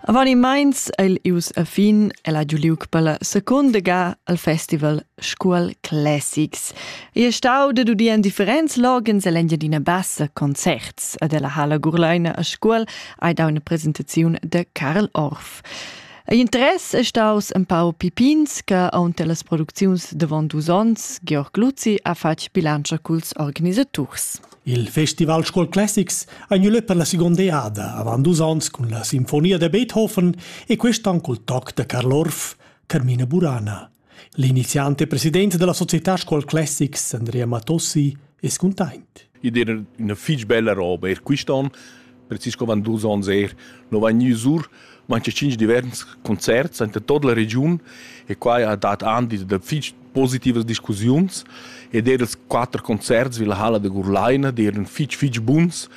Avanimaints el ius a fin el ha giu liug per la seconda ga al festival Scuol Classics. Ei è stau dad udir en differents logens e l'Engiadina Bassa concerts ad ella Hala Gurleina a Scuol hai dau una presentaziun de Karl Orff. Ei interess è staus en pau pipins che aunte las producziuns davon dus onns Georg Luzzi ha fatg bilantscha culs organisaturs. Il festival Scuol Classics ha gnü lö per la segonda eada avant dus ons cun la Sinfonia da Beethoven e quist an cul toc da Karl Orff, Carmina Burana. L'iniziant e president della società Scuol Classics, Andrea Matossi, es cuntaint. Id era üna fich bella roba. Er quist an precis co van dus onns er. No vain gnüs our manche tschinch divers concerts anta tot la regiun e quai ha dat andi da fich positivas discussiuns ed er els quatter concerts vi la halla da Gurlaina d'eran fich fich buns.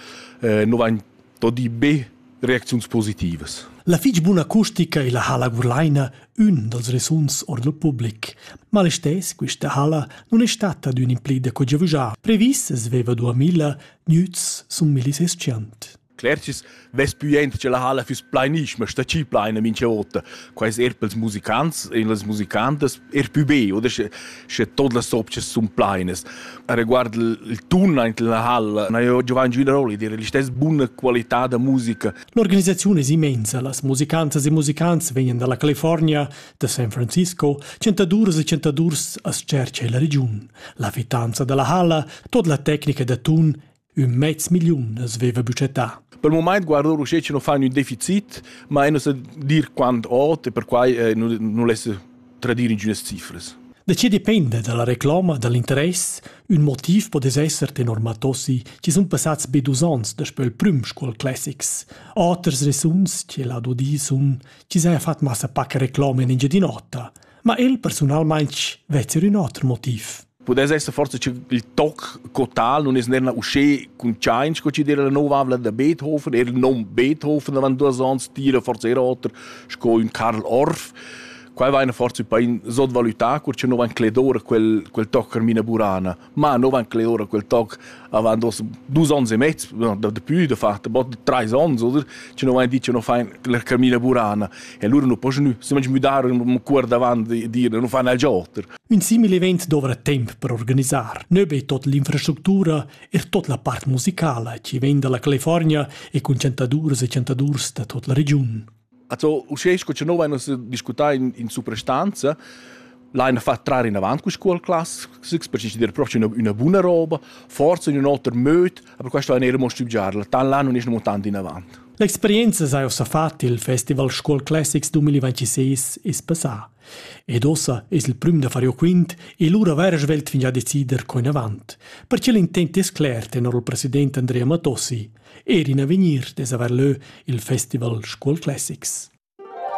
Eh, no vain tot di be reacziuns positivas. La fich buna acustica illa halla Gurlaina, ün dals resuns or dal public. Ma l'estess quista halla non è stata d'ün implida co giavüschà. Previs es veva 2000 Gnüts sun millis eschient. Clercis vess püent che la halla füss plainischma, sta chi plaina mincha ota. Quais er pels musicants, in las musicantas er pü be, oder sche, sche tot las sopchas sun plainas. A riguard il tun aint la halla, na io Giovanni Giuliaroli dire l'istess buna qualità da musica. L'organisaziun es immensa, las musicantas e musicants vegnan dalla California, da San Francisco, chantaduras e chantadurs as tschercha illa regiun. La fitanza da la halla, tot la tecnica da tun, ün mez milliun as veva budgetà. Per il moment guardo che non fanno un deficit, ma non sa dir quando ot e per quai eh, non laisse tradire ingiunas cifres. De ce dipende dalla reclama, dall'interess, un motiv po des esser tenor Matossi ci sun passats be dus ans da spöl prüm Scuol Classics. Oters resuns, ce lado di sun chi s'haja fat massa pac recloma in Engiadin'Ota, ma el persunalmaing vezza ün oter motiv. Pudess esser forse il toc total non es nerna usché cun Chain sco ci dire la nova avla da Beethoven, er non Beethoven avant duas ans tira forse era oter sco un Karl Orff. Qua va eine forse bei un sotvalutà cur che non van cledora quel quel toc Carmina Burana. Ma no van cler ora quel toc avant dos dus ons e mezz, no, da dapü da far bod trais ons oder che no vain dit che no fain la camina burana e allura nu po gnü semage müdar un cuor davant e dire nu fan alch oter. Ün simil event dovra temp per organisar. Nö be tot l'infrastructura, er tot la part musicala chi vegn dalla California e cun chantaduras e chantadurs da tot la regiun. Also, uschè sco cha no vain nus discutà in, in suprastanza, l'hain fat trar inavant cu scuol classics per decider propi üna, üna buna roba, forsa in ün oter möd, aber questo hain eir mo stübgiarla, tan là nun es amo tant inavant. L'experienza s'ha ussa fat il Festival Scuol Classics 2026 es passà. Ed ossa es il prüm da far jo quint e lura vair svelt fingià decider co inavant. Perche l'intent es cler, tenor il president Andrea Matossi – Ed in avegnir dess haver leu il festival Scuol Classics.